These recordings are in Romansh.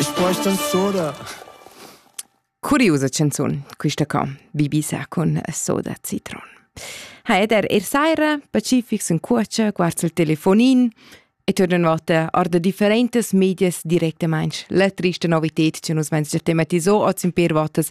Ich bräuchte Soda. Curiusa canzun, quista co, Bibi sa cun soda citron. Ha ed er er saira, pacifics in cuocia, guards il telefonin, e tornan vota arda differentas medias directamain. La trista novität che nus vens già tematiso oz in per votas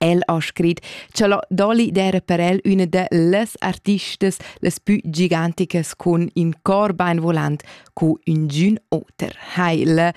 El ha scrit cha la Dolly d'eira per el üna da las artistas las pü giganticas cun ün cor bainvolant cu üngün oter. Heil!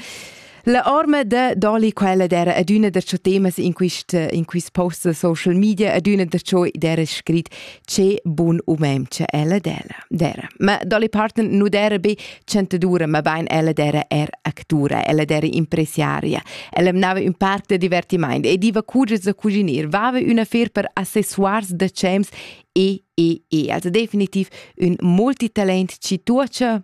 La orma da Dolly quella d'era adüna darcho temas in quist in quist post da social media, adüna darcho d'era scrit che bun umem che ella della dera ma dolli parten nu dera be chantadura ma bein ella dera er actura ella dera impresiaria ella mnava un parc de divertiment e diva cuges da cuginir vava una fer per accessoires da cems e e e also definitiv un multitalent ci tuocha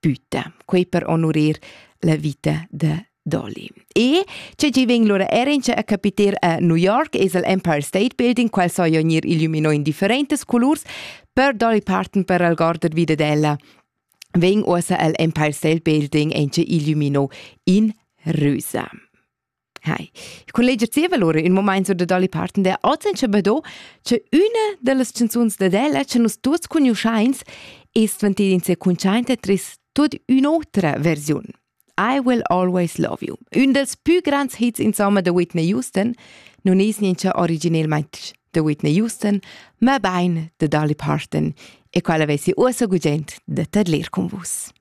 tüta, quei per onurir la vita de Dolly. E ce gi vegn lura Erince a capiter a New York es el Empire State Building, qual so ionir illuminò in differentes colors, per Dolly Parton per algorder vide della. Vegn osa el Empire State Building ence illuminò in rosa. Hai, il collega zieva lura ün momaint sur da Dolly Parton der oz in Schabedo, che üna dellas canzuns da della che nus tuots cugnuoschains es dvantida inconsciente tris tuot ün'otra versiun. I Will Always Love You, ün dels pü grands hits insomma da Whitney Houston, nun es niencha originelmaing da Whitney Houston, ma bain da Dolly Parton e quella vesi uossa gugent da tadlir con vus.